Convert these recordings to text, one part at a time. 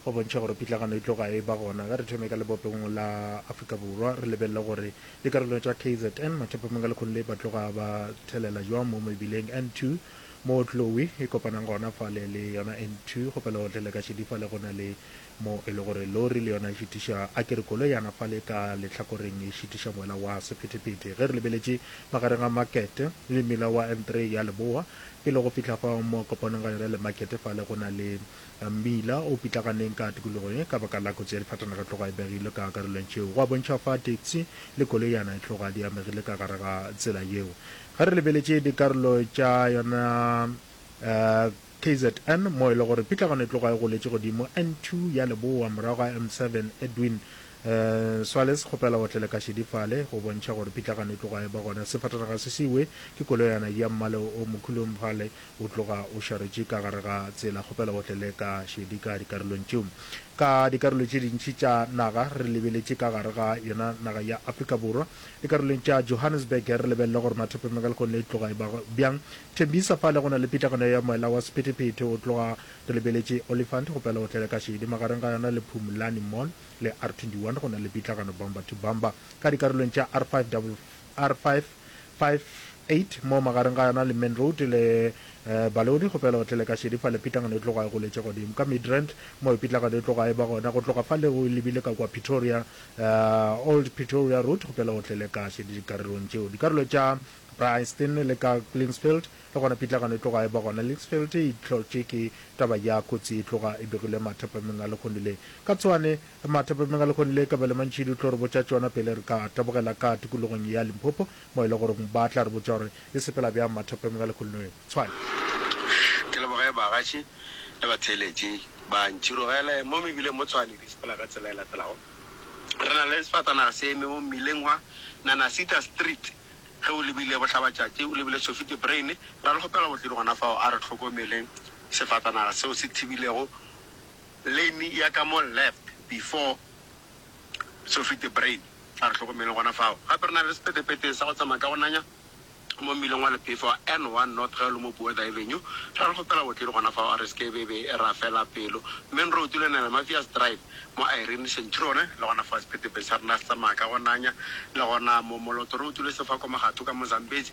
Go bontšha gore pitlagano e tloga e eba gona, ga re thome ka lebopegong la Afrika Borwa, re lebelele gore dikarolong tša kzn, mathapameng a lekgong le, ba tloga ba thelela jwang mo mebileng N2, moo Tlowi e kopanang gona fale le yona N2, go pelegohle le ka šedi fale go na le mo e le gore lori le yona e šitiša, a ke re koloyana fale ka lehlakoreng e šitiša moela wa sephetephete. Ge re lebeletše magareng ga makete le mmila wa N3 ya leboa, pele go fihla fao mo kopanong ga yona le makete fale go na le Mmila o pitlaganeng ka tikologo ye ka baka la kotsi ya difatanaga e tloga e begilwe ka karolong tšeo. Go a bontšha fa taxi le koloiana e tloga di amegile ka gare ga tsela yeo. Ge re lebeletše dikarolo tša yona kzn mo e le gore pitlagano e tloga e goletše godimo N2 ya leboa morago ga M7, Edwin Swalez kgopela o tlele ka šedi fale go bontšha gore pitlagano e tloga e ba gona. Sefatanaga se siwe ke koloiana ya mmala o mokhuloumfale O tloga o šaretše ka gare ga tsela. Kgopela o tlele ka šedi ka dikarolong tšeo. Ka dikarolo tše dintši tša naga re lebeletše ka gare ga yona naga ya Afrika Borwa. Dikarolong tša Johannesburg re lebelele gore Mathope Megalcon e tloga e ba bjang. Thembisa fa le go na le pitlagano ya moela wa sephethephethe. O tloga re lebeletše Olifant. Kgopela o tlele ka šedi. Magareng ga yona le Phumulani Mall le R21 go na le pitlagano bumper to bumper. Ka dikarolong tša R5 double R5. 58 mo magareng ga yona le Main Road le Baleodi go fela o tlele ka šedi fale pitlangano e tloga e goletše godimo ka Midrand moo pitlagano e tloga e ba gona go tloga fale o lebile ka kua Pretoria Old Pretoria Road go fela o tlele ka šedi dikarolong tšeo dikarolo tša Bryanston le ka Linksfield le gona pitlagano e tloga e ba gona Linksfield e hlotše ke taba ya kotsi e tloga e begilwe mathapameng a lehono le ka tswane Re matha pemengalehono le kabelo mantši di tlo re botša tšona pele re ka tabogela ka tikologong ya Limpopo mo e le goreng ba tla re botša gore e sepela bjang matha pemengalehono eo. Tshwane. Ke leboge baagatši le batheeletši ba ntširogele mo mebileng mo Tshwane di sepela ka tsela e latelago. Re na le sefatanaga se eme mo mmileng wa Nanasita Street ge o lebile Bohlabatšatši o lebile Sofite Brain ra le kgopela go tleng gona fao a re hlokomeleng sefatanaga seo se thibilego Lane ya ka mo left before Sofete Brain, a re hlokomeleng gona fao. Gape re na le sepetepete sa go tsamaya ka go nanya mo mmileng wa Lephefa wa N1 North ge o le mo Buerda Avenue. Ra re kgopela botledi gona fao, a re seke be be ra fela pelo. Main Road le Nele Mafias Drive mo Irene Centurion le gona fao sepetepete sa rena se tsamaya ka go nanya, le gona mo Moloto Road le Sefako Magatho ka mo Zambezi.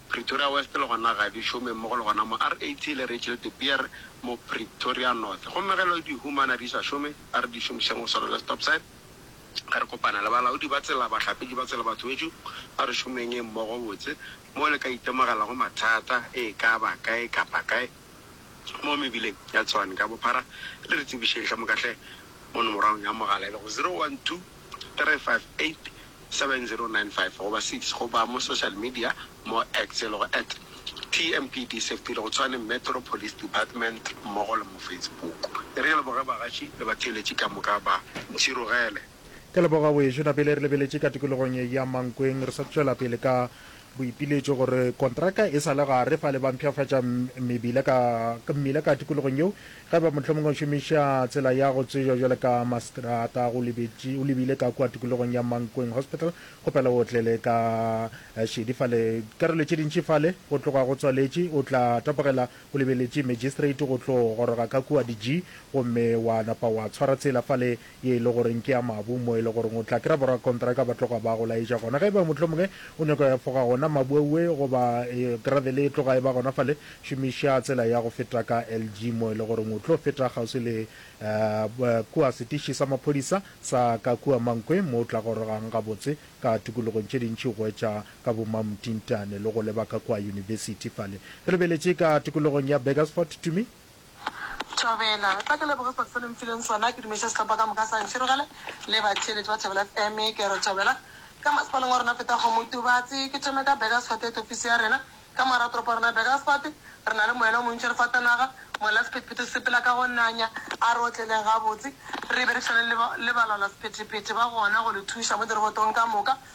Pretoria West le gona ga di šome mmogo le gona mo RAT le Rachel de Beer mo Pretoria North. Gomme ge lo di humana di sa šome, a re di šomišeng go swana le stop sign. A re kopane le balaodi ba tsela, bahlapetši ba tsela, batho bešo, a re šomeng mmogo botse moo le ka itemogelago mathata e ka ba kae kapa kae. mo mebileng ya Tshwane ka bophara le re tsebišeng hle moka hle mo nomorong ya mogala e lego 0123587095 goba 6 goba mo social media mo X e lego at TMPDSafety e lego Tshwane Metro Police Department mmogo le mo Facebook. E re leboge bagaši le batheeletši ka moka ba ntšhirogele. Ke leboga wejo Nabele re lebeletše ka tikologong ya Mankweng re sa tšwela pele ka Boipiletšo gore kontraka e sa le gare fa le ba mpshafatša mmebila ka mmila ka tikologong yeo, ge ba mohlomongwe o šomiša tsela ya go tsejwa jwale ka Mastrata go lebetše o lebile ka kua tikologong ya Mankweng Hospital, kgopela o otlele ka šedi fale dikarolo tše dintši fale go tloga go tswaletše o tla tapogela o lebeletše Magistrate go tlo goroga ka kua di G gomme wa napa wa tshwara tsela fale ye e le goreng ke ya mabu, mo e le goreng o tla kry-a borakontraka ba tloga ba go laetša gona. Ge e ba mohlomongwe o nyaka go efoga gona mabu aue goba gravele e tloga e ba gona fale, šomiša tsela ya go feta ka LG mo e le goreng o tlo feta kgauswi le kua setiši sa maphodisa sa ka kua Mankwe mo o tla gorogang gabotse ka tikologong tše dintši go etša ka bo Mamtintane le go leba ka kua yunibesithi fale. Re lebeletše ka tikologong ya Burgersfort, Tumi. Thobela. Tla ke leboge sebaka se le nfileng sona, ke dumediše sehlopha ka moka sa Nširogele le batheeletši ba Thobela FM. Ke re Thobela ka masepaleng wa rena Phethago Motubatse. Ke thome ka Burgersfort et ofisi ya rena ka mogare ga toropo ya rena Burgersfort. Re na le moyena o montši re fatanaga, molla Sephethephethe o sepela ka go nanya, a re otleleng gabotse. Re be re tšhwane le ba, le balwala sephethephethe ba gona go le thuša mo dirobotong ka moka,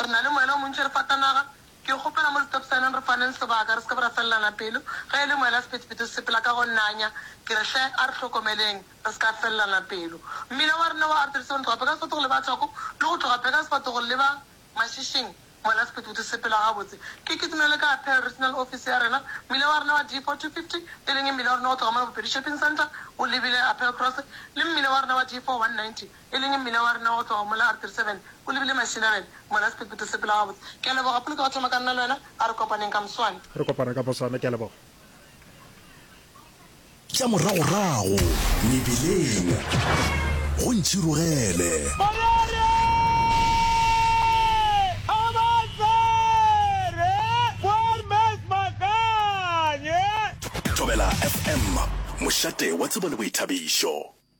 Re na le moela o montši re fatanaga. Ke kgopela mo setopsaneng re faneng sebaka, re se ke be ra felelana pelo. Ge e le moela sephethephethe se sepela ka go nanya, ke re, Hle, a re hlokomeleng re se ka felelana pelo. Mmila wa rena wa artery seven tloga peka sefatogo leba thoko, le go tloga peka sefatogo leba mašišing, moela sephethephethe se sepela gabotse. Ke kitimele ka Pearl Regional Office ya rena. Mmila wa rena wa D four two fifty, e leng e mmila wa rena go tloga mona Bopedi Shopping Centre o lebile Appeal Cross, le mmila wa rena wa D four one ninety, e leng mmila wa rena wa go tloga mola a re 37 o lebile Mashinarena, mola sephethephethe se pela gabotse. Ke a leboga, Poloto ka thoma ka nna le wena, a re kopaneng ka moswane. Re kopana ka moswane, ke a leboga. Tša moragorago mebeleng go ntšhirogele. Morere! Kgabatsere! Boermes Makanye! Thobela FM, mošate wa tsebo le boithabišo.